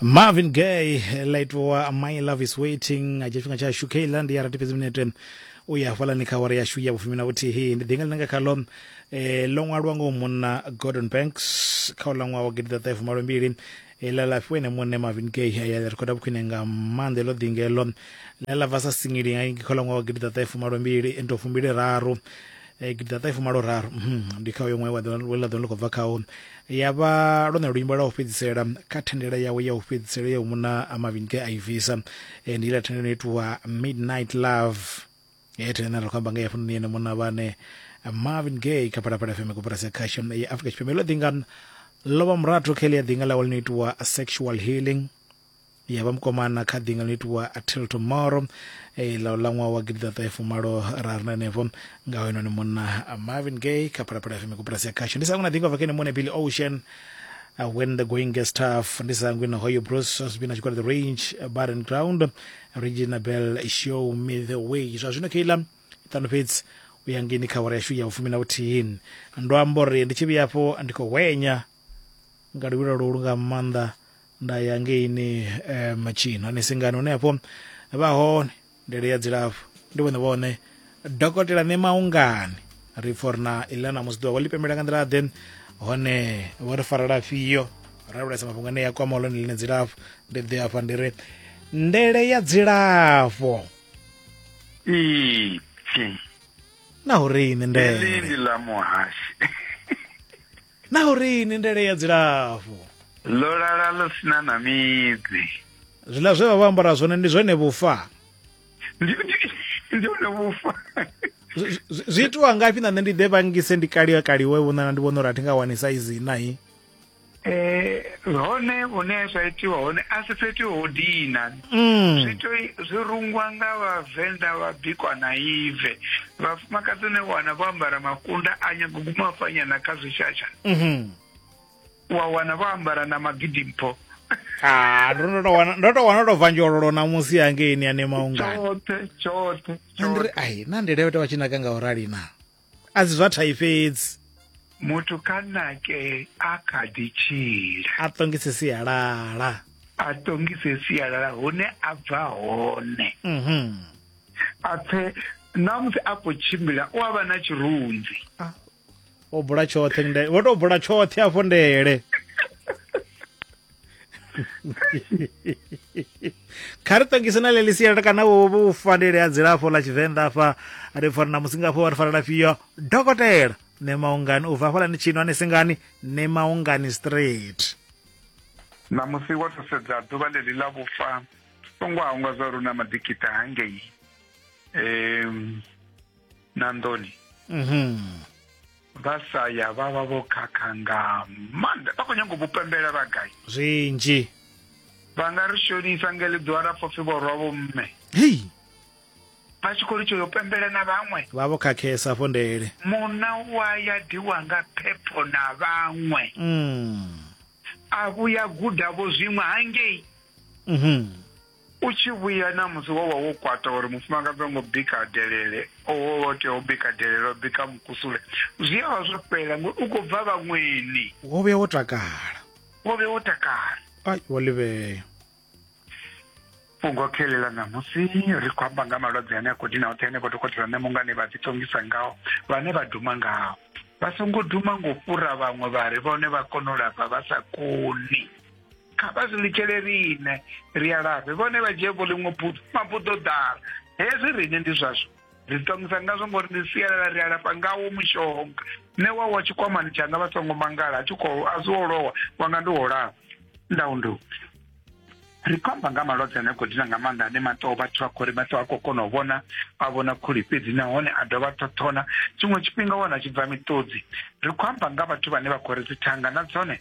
marvin gay light wa my love is waiting a dzhia tshifhinga tshashu kha iḽa ndi ya rati fhedzi minete u ya hafhalani kha awara yashu ya vhufumi na vhuthihi ndi ḓinga ḽine nga khalo um ḽo ṅwalwa ngo munna gordon banks kha u ḽa ṅwaha wa gidi ḓaṱahe fumalombili iḽa ḽa fhiwa ene muṋe marvin gay ya ḽi rekhoda vhukhwine nga maanḓa iḽo ḓinga iḽo ḽa ḽa bva sa singili nga kha ḽa ṅwaha wa gidi ḓaṱahe fumalombili ndo fumbili raru Eh, gidiḓaṱahefumaloraru mhm, ndi kha uyo ṅwe ḽa ḓo ḽi khou bva khawo ya vha lwone luimbo lwa u fhedzisela kha thendela yawe ya u fhedzisela ya u muna a mavhini ke a i bvisa eh, ndi iḽa thendelo no itiwa midnight love ye eh, thendela ri khou amba nga ya funoni yene muna vhane marvin gay kha phalaphala fm koporasi ya khasho ya afrika tshipembe ḽo ḓinga lovha murato kha iḽi ya ḓinga ḽawe ḽi no itiwa sexual healing ya vha mukomana kha ḓinga ḽo itiwa until tomorrow eh, ḽa ḽa ṅwaha wa gidiḓaṱahefumalo ra ri nanefho nga hoenoni munna marvin gay kha phalaphala fm koporasi ya khasho ndi sa ngwina ḓinga vakene mone billy ocean uh, when the going gets tough ndi sa ngwina hoyo bruce osbin a tshi kwala the range uh, barren ground regina bell show me the way zwa zwino keila ṱano fhedzi u ya ngeni kha awara yashu ya u fumi na vhuthihi ndo amba uri ndi tshi vhuya afho ndi khou hwenya nga luvhilo lwo lu nga maanḓa nda ya ngeini um tshino hani singani hune hafho vha hone ndele ya dzilafho ndi vhone vhone dokotela ne maungani ri pfha uri na iḽa na musi ḓuvha vho ḽi pembela nga nḓila ḓe hone vho ri farela fhio ra vhulesa mafhungo ane ya kwama lone ḽine dzilafho ndi ḓe afha ndi ri ndele ya dzilafho ipfi na uri ini ndele ndi ḽa muhashi Na u ri ni ndele ya dzilafho. Ḽo lala ḽo sina na midzi. Zwiḽa zwe vha vha ambara zwone ndi zwone vhufa. Ndi ndi hone vhufa. Zwi itiwa ngafhi na nṋe ndi ḓe vhangise ndi kaliwe kaliwe vho nana ndi vhona uri a thi nga wani saizi na hi. Eh hone hune zwa itiwa hone a si fhethu ho dina. mm. zwi to zwi rungwa nga vhavenḓa vha bikwa na ive vhafumakadzi ne wana vho ambara makunda a nyago guma fanyana kha zwishasha mm -hmm. wa wana vho ambara na magidi mpho ah, ndo to wana ndo to wana to vanjololo na musi yange ini ane maungani chote chote chote ai na ndelewe to vha tshi naka nga urali na a si zwa thai fhedzi muthu kha nake a kha ḓi tshila a ṱongise sialala a ṱongise sialala hune a bva hone mhm. a pfe na musi a khou tshimbila u a vha na tshirunzi ah, o bula tshoṱhe vho tou bula tshoṱhe afho ndele kha ri ṱongise na ḽeḽi sialala kana vhufanele ha dzilafho ḽa tshivenḓa afha ri fana na musi ngafho wa ri fanela fhio dokotela ne maungani u bva hafhalani tshino ane singani ne maungani straight ṋamusi wo to sedza ḓuvha ḽeḽi ḽa vhufa songo hangwa zwa uri u na maḓikita hangei um na nḓoni mhm. vha sa ya vha vha vho khakha nga maanḓa vha khou nyanga u vhupembela vha gai zwinzhi vha nga ri shonisa nga ḽi ḓiwa ra pfopfi vhorwa vho mme hei vha tshi khou ri tsho yo pembela na vhaṅwe vha vho khakhesa afho ndele munna wa ya diwa nga phepho na vhaṅwe mm. a vhuya guda vho zwiṅwe hangei mm -hmm. U tshi vhuya ṋamusi wo vha wo kwata uri mufumakadzi ho ngo bika delele, o wo vha o tea u bika delele, o bika mukusule. Zwi a vha zwo fhela ngori u khou bva vhaṅweni. Wo vhuya wo takala. Wo vhuya wo takala. Ai, wo ḽivhea. Fhungo khe ḽi ḽa ṋamusi ri khou amba nga malwadze ane a khou dina hoṱhe henefho dokotela Ṋemungani vha ḓiṱongisa ngao, vhane vha duma ngao. Vha songo duma nga u fhura vhaṅwe vha ri vhone vha kona u lafha vha sa koni. kha vha zwi litshele riṋe ri a lafhe vhone vha dzhie vho ḽiṅwe buḓo mabuḓo ḓala hezwi riṋe ndi zwazwo ri ṱongisa ngazwo ngori ndi sialala ri alafha ngawo mushonga nṋe wa wa tshikwamani tshanga vha songo mangala a tshi khou a zwi wo lowa wanga ndi wo lafha ndau ndu ri khou amba nga malwadze ane khou dina nga maanḓa ane maṱo vhathu vha khou ri maṱo a khou kona u vhona a vhona khuli fhedzi nahone a dovha ṱhoṱhona tshiṅwe tshifhinga wana tshi bva miṱodzi ri khou amba nga vhathu vhane vha khou ri dzithanga na dzone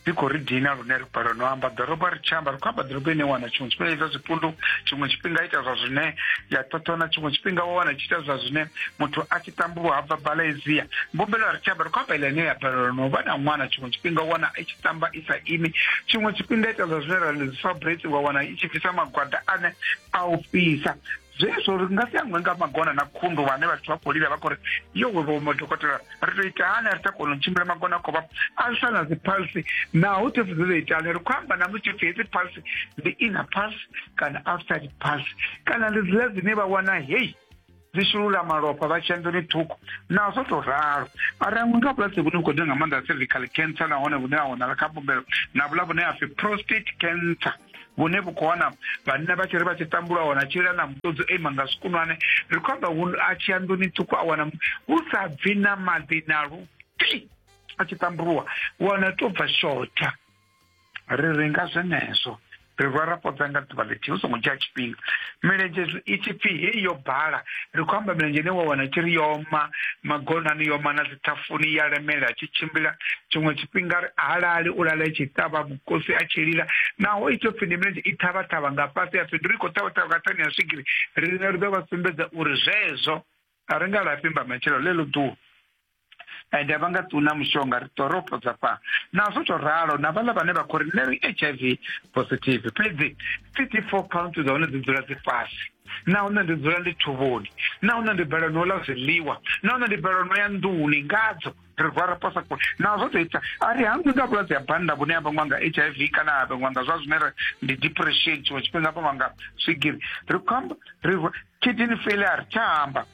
dzi khou ri dina lune ri balelwa no amba ḓorobo ri tshi amba ri khou amba ḓorobo ine wana tshiṅwe tshifhinga ita zwipundu tshiṅwe tshifhinga ita zwa zwine ya ṱhoṱhona tshiṅwe tshifhinga wa wana tshi ita zwa zwine muthu a tshi tambulwa ha bva balezia mbumbelo a ri tshi amba ri khou amba ile ine ya balelwa no vha na ṅwana tshiṅwe tshifhinga wana i tshi tamba i sa imi tshiṅwe tshifhinga ita zwa zwine ra ḽi dzi fabrate wa wana i tshi bvisa magwada ane a u fhisa zwezwo ri nga si aṅwe nga magona na khundu vhane vhathu vha khou lila vha khou ri yo wevomo dokotela ri tou ita hani a ri tsha kona u tshimbila magona a khou vha a swa na dziphalsi naho thefu dzi ḓo ita hani ri khou amba na musi tshipfi hedzi phalsi ndi inner pulse kana outside pulse kana ndi dzila dzine vha wana hei dzi shulula malofha vha tshiya nḓuni ṱhukhu na zwo tou ralo ara ṅwe nga vhulwadze vhune vhu khou ḓa nga maanḓa cervical cancer nahone vhune ha wanala kha mbumbelo na vhula vhune ha pfi prostate cancer vhune vhu khou wana vhanna vha tshi ri vha tshi tambula wana a tshila na muṱodzi o ima nga zwikunwane ri khou amba a tshi ya nḓuni ṱhukhu a wana hu sa bvi na maḓi na luti a tshi tambuluwa wana to bva shotha ri ri nga zwenezwo ri rwa ra podza nga ḓuvha ḽithihi hu songo dzhia tshifhinga milenzhe i tshi pfi heyi yo bala ri khou amba milenzhe ine wa wana tshi ri yoma magonani yoma na dzithafuni ya lemela tshi tshimbila tshiṅwe tshifhinga ri halali u lala tshi ṱavha khosi a tshi lila naho i topfi ndi milenzhe i ṱhavhaṱhavha nga fhasi a pfi ndi ri khou ṱhavhaṱhavha nga thani ya swigiri riṋe ri ḓo vha sumbedza uri zwezwo a ri nga lafhi mba matshelo ḽeḽo ḓuwa ende vha nga ṱuna mushonga ri ḓo ro fhodza fha na zwo tou ralo na vhaḽa vhane vha khou ri nṋe ri h i v positive fhedzi city four count dza hone dzi dzula dzi fhasi na hune ndi dzula ndi thuvhoni na hune ndi balelwa no ḽa zwiḽiwa na hune ndi balelwa no ya nḓuni ngadzo rivara pasa ko nazvo toita ari hangu nda vhulwadze ya banda vhune ya vhangwa nga h i v kana ya vhangwa nga zwa zwine ndi depression tshiṅwe tshifhinga vhangwa nga swigiri ri khou amba ri kidini failure tsha amba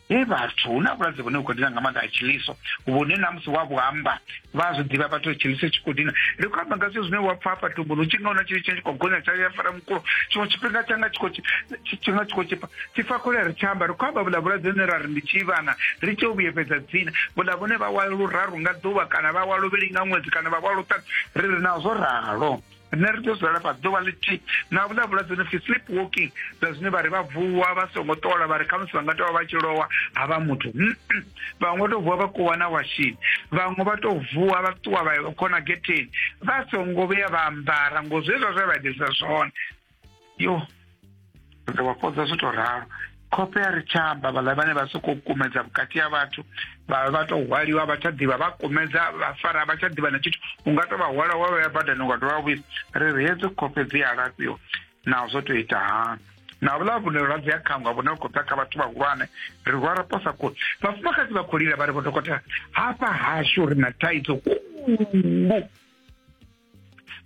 he vhathu hu na vhulwadze vhune vhu khou dina nga maanḓa a tshiliso vhune na musi wa vhu amba vha zwi ḓivha vhathu ri tshiliso tshi khou dina ri khou amba nga zwithu zwine wa pfa hafha tumbuni u tshi nga huna tshili tshine tshi khou gonya tsha ya fara mukulo tshiṅwe tshifhinga tshanga tshi khou tshifhinga tshi khou tshipa ti fa kule ri tshi amba ri khou amba vhuḽa vhulwadze hune ra ri ndi tshivhana ri tshi u vhuyefhedza dzina vhuḽa vhune vha wa luraru nga ḓuvha kana vha wa luvhili nga ṅwedzi kana vha wa luṱanu ri ri nazwo ralo rine ri tea u dzula lafha ḓuvha ḽithihi na vhuḽa vhulwadze no pfi sleep walking zwa zwine vha ri vha vuwa vha songo ṱola vha ri khamusi vha nga tou vha vha tshi lowa ha vha muthu vhaṅwe vha tou vuwa vha kuwa na washini vhaṅwe vha tou vuwa vha ṱuwa vha khona getheni vha songo vhuya vha ambara ngo zwezwa zwe vha itisa zwone yo ri wa fhodza zwi to ralo khofhe ya ri tshamba vhaḽa vhane vha sokou kumedza vhukati ha vhathu vha vha to hwaliwa vha tsha ḓivha vha kumedza vha fara vha tsha ḓivha na tshithu u nga to vha hwala wa vhaya badani u nga dovha vhuisa ri ri hedzo khofhe dzi a lafhiwa naho zwo to ita hani na vhuḽa vhune lwadze ya khangwa vhune vha khou bva kha vhathu vhahulwane ri rwa ra posa kule vhafumakadzi vha khou lila vha ri vho dokotela hafha hashu ri na thaidzo khulu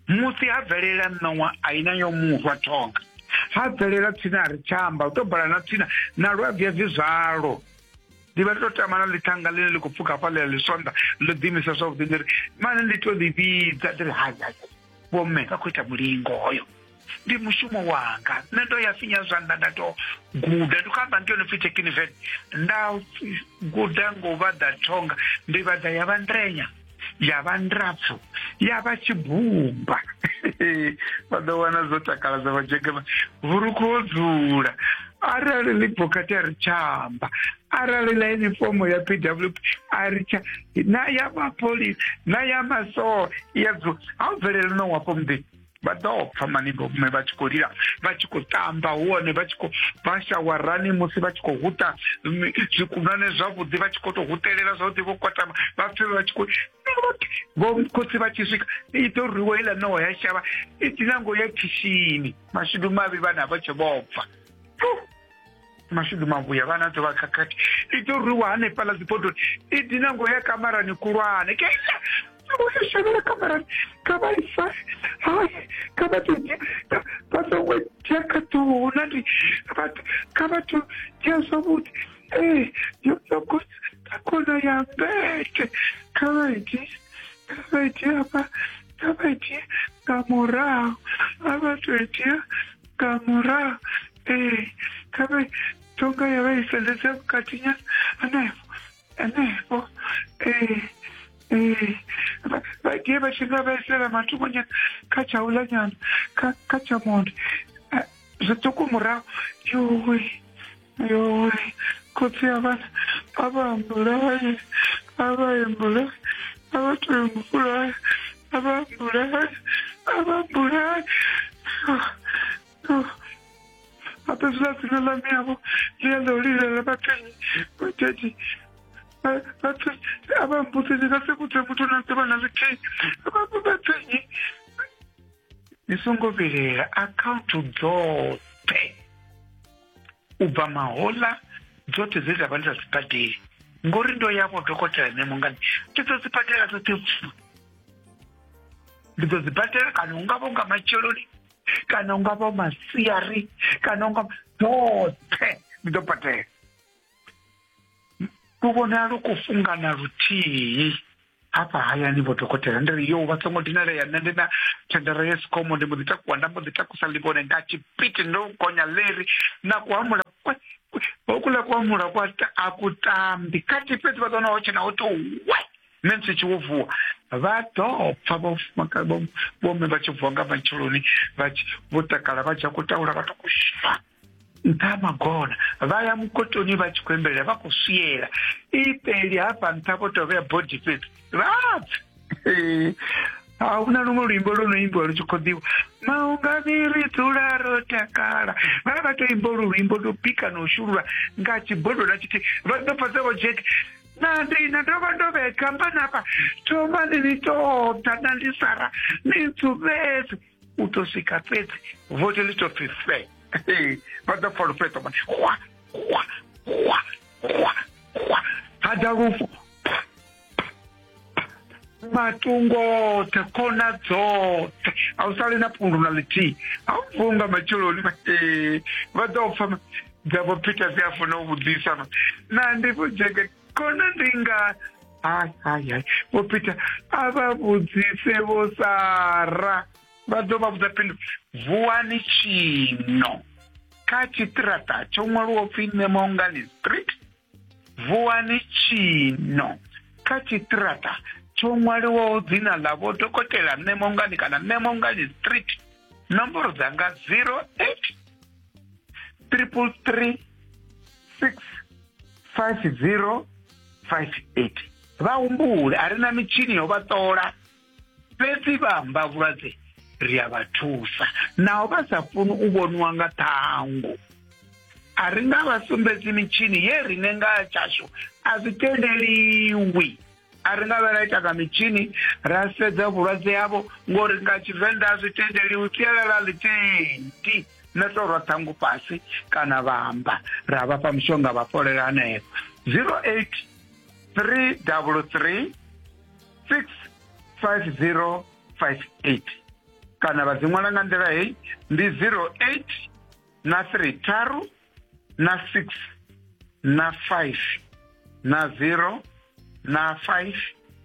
musi ha bvelela ṋowa a ina yo murwa thonga ha bvelela tsini a ri tshamba u to bala na tsini na lu a bvia bvi zwalo ndi vha ri to tama na ḽithanga ḽine ḽi khou pfuka hafha ḽi ḽi sonda ḽo ḓimisa zwavhuḓi ndi ri mane ndi to ḽi vhidza ndi ri hai hai vhomme vha khou ita mulingo hoyo ndi mushumo wanga nṋe ndo ya finya zwanḓa nda to guda ndi khou amba ngeno pfi tekiniven nda guda ngo vhaḓa thonga ndi vhaḓa ya vha ndrenya ya vha ndrapfu ya vha tshibumba vha ḓo wana zwo takala dza vhajegema vhurukhu ho dzula arali ḽi bokati a ri tshamba arali ḽa inifomo ya pw a ri tsha na ya mapholisa na ya masoa ya dzula ha u bvelele no wapo muḓini vha ḓo pfa maningo mme vha tshi khou lila vha tshi khou tamba huone vha tshi khou vha shawarani musi vha tshi khou huta zwikunane zwavhuḓi vha tshi khou tou hutelela zwavhuḓi vho kwatama vha pfe vha tshi khou vho khotsi vha tshi swika i ḓo rwiwa iḽa ṋowa ya shavha i dinango ya khishini mashudu mavhi vhana vha tshe vho bva mashudu mavhuya vhana ḓo vha khakhathi i ḓo rwiwa hanefhaḽa dzibodoni i dina ngo ya kamarani kulwane ke shavhela kamarani kha vha ifare hai kha vha to vha songo dzhia kha ṱuhu na ndi kha vha to dzhia zwavhuḓi ee eh, yo ṱogo ta khona ya mbete kha vha itie kha vha itie hafha kha vha itie nga murahu a vha to itia nga murahu ee khabe tonga ya vha i sendedza vhukati nyana hanefho hanefho ee ee Vha- vha die vha tshi nga vhaisela matungo nyana kha tsha u ḽa nyana kha kha tsha monde Ah, zwiṱuku murahu yuwi Yo, khotsi ya vhana a vha ambulaye a vha embulaye a vha to embulaye a vha ambulaye a vha ambulaye hata zwi dzina ḽa miyavho ḽi ya ḽa u lilela vhathenyi vhathetshi vhathu a vha mbudzi ndi nga si vhudze muthu na ḓuvha na ḽithihi vhavho vhathenyi ni songo vhilela akhaunthu dzoṱhe u bva mahoḽa dzoṱhe dze dza vha ndi sa sibadeli ngori ndo ya vho dokotela nṋe mungani ndi ḓo sibadela dzoṱhe pfu ndi ḓo sibadela kana u nga vho nga matsheloni kana u nga vho masiari kana u nga dzoṱhe ndi ḓo badela lu vhonala lu khou fungana luthihi hafha hayani vho dokotela ndi ri yo vha songo dinalea nṋe ndi na thendara ya sikomo ndi mbo ḓi takuwa nda mbo ḓi takusa ḽivhone nga tshipiti ndo gonya leri na kuhamula kwe hokuḽa kuhamula kwa a ku tambi khathi fhedzi vha ḓona ho tshena ho to we nṋe ndi tshi wo vuwa vha ḓo pfa vhomme vha tshi vuwa nga matsheloni vho takala vha dzhia kutawula vha to kushuma nṱha ha magona vha ya mukotoni vha tshi khou embelela vha khou swiela ipeli hafha nṱha vho tou vhea body fhedzi vhapfa a hu na luṅwe luimbo lwo no imbiwa lu tshi khou ḓiwa maungani ri dzula ro takala vha vha tou imba lu luimbo lwo bika na u shulula nga tshibodo na tshithihi vha ḓo fhedza vho jack na ndi na ndo vha ndo vhekamba nafha thomani ni ṱoḓa na ndi sara ni ntsuvhedze u tou swika fhedzi vote ḽi tou pfi fe vha ḓo pfa lufheṱo mani hwa hwa hwa hwa hwa ha ḓa lufu matungo oṱhe khona dzoṱhe a u sali na pundu na ḽithihi a u funga matsheloni vha ḓo pfa dzavho phita dzi a funa u vhudzisa na ndi vhudzeke kona ndi nga hayi hayi hayi vho peter a vha vhudzise vho sara vha ḓo vha vhudza phindu vuwani tshino kha tshiṱiraṱa tsho ṅwaliwaho pfhi nemongani street vuwani tshino kha tshiṱiraṱa tsho ṅwaliwaho dzina ḽa vho dokotela nemongani kana nemongani street nomboro dzanga 08 triple three 65058 vha humbule a ri na mitshini yo vha ṱola fhedzi vha amba vhulwadze ri a vha thusa naho vha sa funi u vhoniwa nga ṱhangu a ri nga vha sumbedzi mitshini ye rine nga tshashu a zwi tendeliwi a ri nga vha ra ita nga mitshini ra sedza vhulwadze yavho ngori nga tshivenḓa a zwi tendeliwi sialala ḽitendi na to rwa ṱhangu fhasi kana vha amba ra vhafha mushonga vha fholela hanefho zero eight three double three six five zero five eight kana vha dzi ṅwala nga nḓila heyi ndi zero eight na three tharu na six na five na zero na five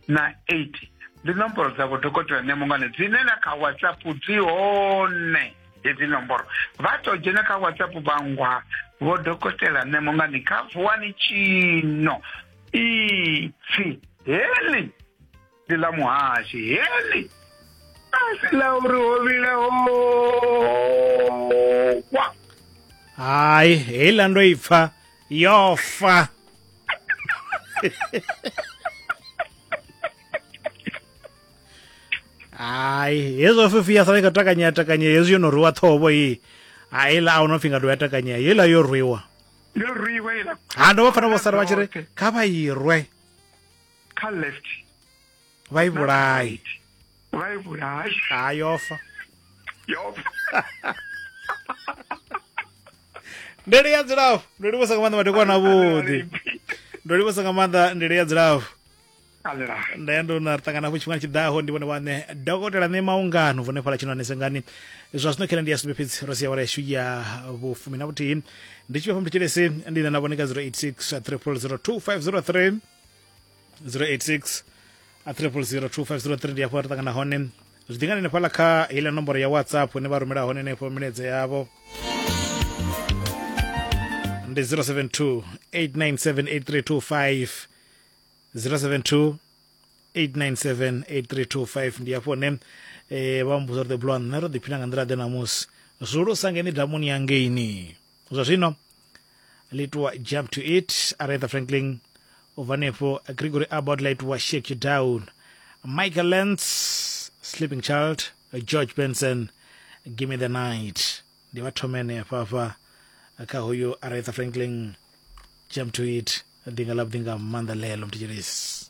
na eight ndi nomboro dza vhodokotela nemungane dzine na kha whatsapp dzi hone hedzi nomboro vha to dzhena kha whatsapp vhangwa vhodokotela nemungane kha vuwani tshino ipfi heḽi ndi ḽa muhashi heḽi asi ḽa uri ho vhila howa hai heiḽa ndo i pfa yo fa hai hezwo fifi ya sala i kha takanyea takanyea hezwi yo no rwiwa ṱhovo iyi haiḽa a hu no pfi nga dovha ya takanyea heiḽa yo rwiwa yo rwiwa iḽa ha ndo vha pfana vho sala vha tshi ri kha vha irwe kha left vha i vhulaye vha i vhulaye ha yofa yofa ndele ya dzilafho ndo livhusa nga maanḓa madekwana avhuḓi ndo livhusa nga maanḓa ndele ya dzilafho nda ya ndo na ri ṱangana hafho tshifhinga tshiḓaho ndi vhone vhaṋe dokotela ṋe maungano vhone fhala tshino anesengani zwa zwino khela ndi ya sumbe fhedzi ro sia wala yashu ya vhufumi na vhuthihi ndi tshi vha fha mthetshelesi ndi na na vhone ka 086 300 2503 086 a 3002503 ndi hafho ri ṱangana hone zwi ḓingani nefhala kha heiḽa nomboro ya whatsapp ine vha rumela hone henefho milaedza yavho ndi 072 897 072 897 ndi hafho hone eh, vha mbuza uri the blue nṋe ro ḓiphina nga nḓila ḓe namusi zwulusa ngeni damuni yangeini zwa zwino litiwa jump to it aretha franklin u bva nefho gregory abbott la itiwa shake you down michael lance sleeping child george benson give me the night ndi vha thome henefha hafha kha hoyo aretha franklin jump to it ḓinga ḽa vhuḓinga maanḓa ḽeḽo mthetshelesi